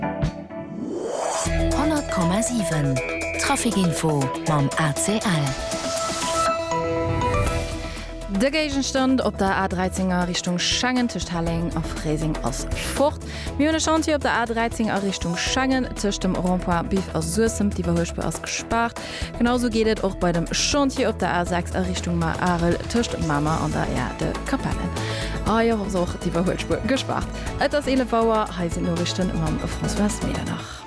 100,7 Trafikinfo mam ACL. De Géigenstand op der A13 a Richtung Schengen tëscht Helleng a Fréiseng ass fort. Mir hunn e Chantier op der A13 a Richtung Schengen tëscht dem Rond-point Biff a Suessem. D'Iwwerhuelspur ass gespaart. Genausou geet et och bei dem Chantier op der A6 a Richtung Marl Arel tëscht Mamer an der Aire de Capellen. Hei ass och d'Iwwerhuelspur gespaart. Et ass 11 Auer, hei sinn d'Noriichten mam Françoise Medernach.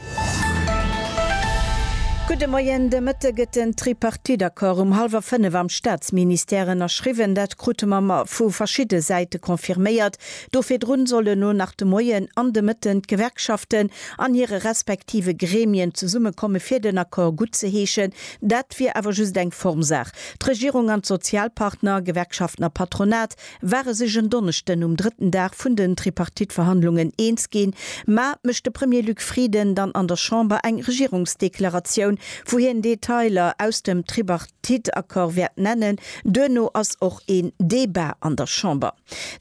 Gudde Moien, de Mëtte gëtt den Tripartite-Accord um hallwer 5 am Staatsministère ënnerschriwwen. Dat krute mer mer vu verschidde Säite confirméiert. Do virdrun soll elo nach de Moien an de Mëtten d'Gewerkschaften an hire respektive Gremien zesummekomme fir den Accord gutt ze heeschen. Dat wier awer just eng Formsaach. D'Regierung an d'Sozialpartner, Gewerkschaften a Patronat, war e sech en Donneschden um drëtten Dag vun den Tripartite-Verhandlungen eens ginn, mä mécht de Premier Luc Frieden dann an der Chamber eng Regierungsdeklaratioun, wou hien Detailer aus dem Tripartite-Accord wäert nennen. Duerno ass och een Debat an der Chamber.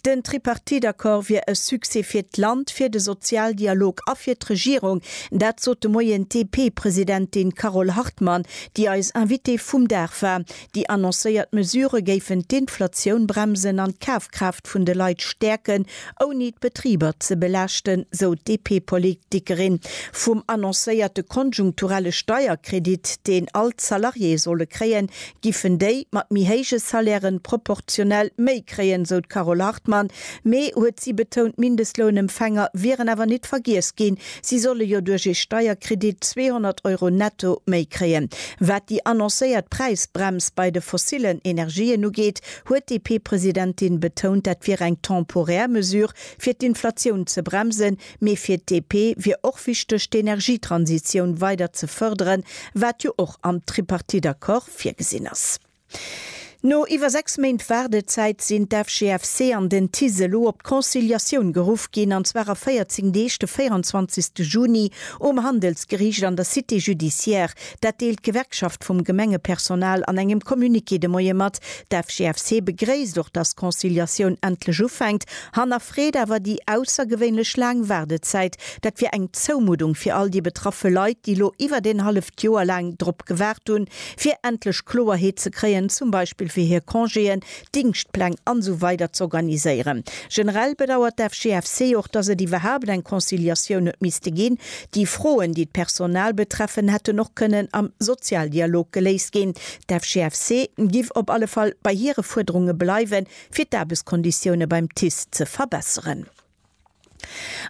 Den Tripartite-Accord wier e Succès fir d'Land, fir de Sozialdialog a fir d'Regierung, dat sot de Moien d'DP-Presidentin Carole Hartmann, déi eis Invitée vum Dag war. Déi annoncéiert Mesurë géifen d'Inflatioun bremsen an d'Kafkraaft vun de Leit stäerken, ouni d'Betriber ze belaaschten, sou d'DP-Politikerin. Vum annoncéierte konjunkturelle Steierkredit, deen all d'Salariéë solle kréien, giffen déi mat méi héije Salairen proportionell méi kréien, sou d'Carole Hartmann. Mee, huet si betount, Mindestlounempfänger wieren awer nit vergiess ginn. Si solle jo duerch ee Steierkredit 200 Euro netto méi kréien. Wat déi annoncéiert Präisbrems bei de fossillen Energien ugeet, huet d'DP-Presidentin betount, dat wier eng temporär Mesure, fir d'Inflatioun ze bremsen. Mee fir d'DP wier och wichteg, d'Energietransitioun weider ze fërderen, wat jo och am Tripartite-Accord virgesinn ass. No iwwer 6 Méint Waardezäit sinn d'FGFC an den TICE elo op d'Conciliatioun geruff ginn, an zwar a 14 Deeg, de 24 Juni um Handelsgeriicht an der Cité judiciaire. Dat deelt d'Gewerkschaft vum Gemengepersonal an engem Communiqué de Moie mat. D'FGFC begréisst och, datt d'Conciliatioun endlech ufänkt, hannerfreet awer déi aussergewéinlech laang Waardezäit. Dat wier eng Zoumuddung fir all déi betraffe Leit, déi elo iwwert een halleft Joer laang drop gewaart hunn, fir endlech Kloerheet ze kréien, zum Beispill fir hir Congéen, Dingschtpläng an esou weider z'organiséieren. Generell bedauert d'FGFC och, dass et iwwerhaapt eng Conciliatioun huet misste ginn. Déi Froen, déi d'Personal betreffen, hätten och kënnen am Sozialdialog geléist ginn. D'FGFC giff op alle Fall bei hire Fuerderunge bleiwen, fir d'Aarbechtskonditioune beim TICE ze verbesseren.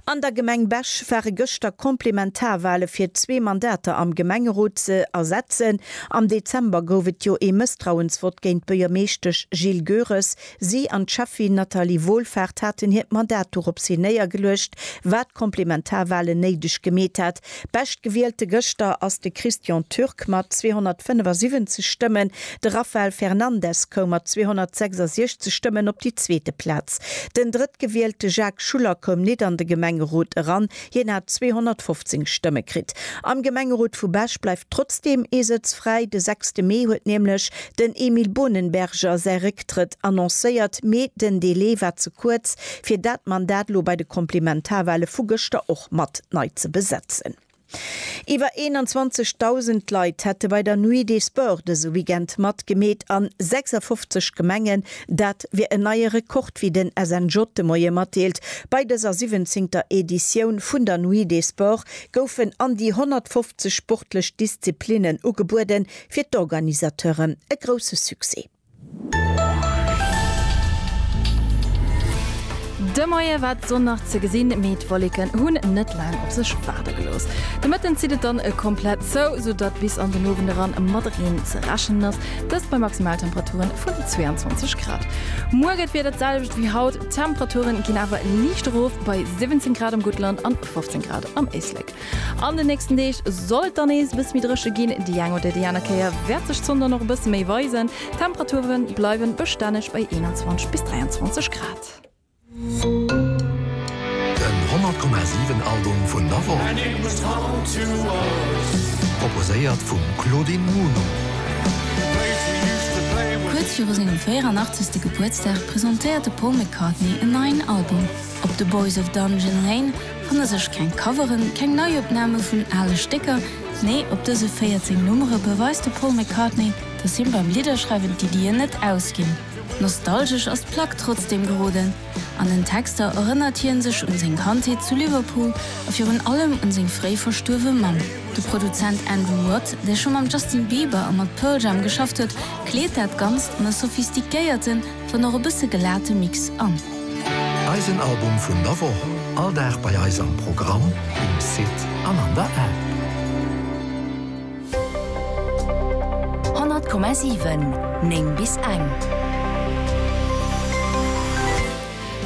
An der Gemeng Bech ware gëschter Komplementarwale fir zwee Mandater am Gemengerot ze ersetzen. Am Dezember gouf et jo ee Mësstrauensvott géint d'Buergermeeschtesch Jill Goeres. Si an d'Schäffin Nathalie Wohlfahrt haten hiert Mandat dorops hin néiergeluecht, wat Komplementarwalen néideg gemeet hat. Beschtgewielte gëschter ass de Christian Türk mat 275 Stëmmen. De Rafael Fernandes koum mat 266 Stëmmen op déi zweete Plaz. Den Drëttgewielte Jacques Schuller koum nit an de Gemengerot eran, hien hat 215 Stëmme kritt. Am Gemengerot vu Bech bleift trotzdeem ee Sëtz fräi. De sechste Mee huet nämlech den Emile Bohnenberger säi Récktrëtt annoncéiert, mee den Delai war ze kuerz. fir dat Mandat lo bei de Komplementarwale vu gëschter och mat nei ze besetzen. Iwwer 21.000 Leit hätte bei der Nuit des Sports dëse Weekend matgemeet an 56 Gemengen. Dat wier en neie Rekord, wéi den SNJ de Moie matdeelt. Bei dëser siwwenzéngter Editioun vun der Nuit des Sports goufen an déi 150 sportlech Disziplinnen ugebueden, fir d'Organisateuren e grousse Succès. De Moie war d'Sonn nach ze gesinn, mee d'Wolleken hunn net laang op sech waarde gelooss. De Mëtten zitt et dann komplett zou, sou datt bis an den Owend eran mat Reen ze rechnen ass, dëst bei Maximaltemperature vun 22 Grad. Muer gëtt d'Wieder d'selwecht wéi haut, d'Temperature ginn awer liicht erof, bei 17 Grad am Guttland an 15 Grad am Éislek. An den nächsten Deeg soll et dann nees e bësse méi dréche ginn. Déi eng oder déi aner Kéier wäert sech d'Sonn dann och e bësse méi weisen. D'Temperature bleiwe bestänneg bei 21 bis 23 Grad. Den 100 Komma 7 Album vun der Woch. Proposéiert vum Claudine Muno. Kuerz viru sengem 84. Gebuertsdag presentéiert de Paul McCartney en neien Album. Op The Boys of Dungeon Lane. Fanne sech keng Coveren, keng Neiopname vun ale Stécker, nee op dëse 14 Nummere beweist de Paul McCartney, dass him beim Lidderschreiwen d'Iddien net ausginn. Nostalgesch ass d'Plack trotzdeem geroden. An den Texter erënnert hie sech un seng Kandheet zu Liverpool a virun allem un seng fréi verstuerwe Mamm. De Produzent Andrew Watt, dee scho mam Justin Bieber a mat Pearl Jam geschafft huet, kleet dat Ganzt an e sophistiquéierten, dann och e bësse gelate Mix an. Eisen Album vun der Woch, all Dag bei eis am Programm, um Site an an der App. 100,7, 9 bis eng.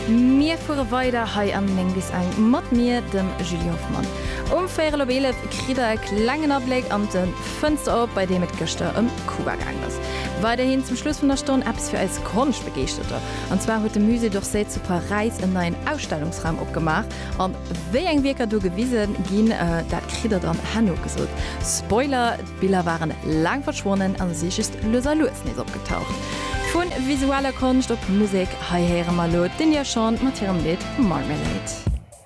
Mir fuere weider hei am 9 bis eng mat mir, dem Julie Hoffmann. Um véirel op eelef kritt der e klengen Abléck an de. D'Fënster op, bei deem et gëschter ëm Kuba gaangen ass. Weiderhin zum Schluss vun der Stonn eppes fir eis Konschtbegeeschterter. An zwar huet de Musée d'Orsay zu Paräis en neien Ausstellungsraum opgemaach. An wéi eng Wierker do gewise ginn, dat kritt der dann herno gesot. Spoiler, d'Biller waren laang verschwonnen a si just lues a lues nees opgetaucht. Vu visueller Konscht op Musek, hei héiere mer elo d'India Shawn mat hirem Lidd Marmalade.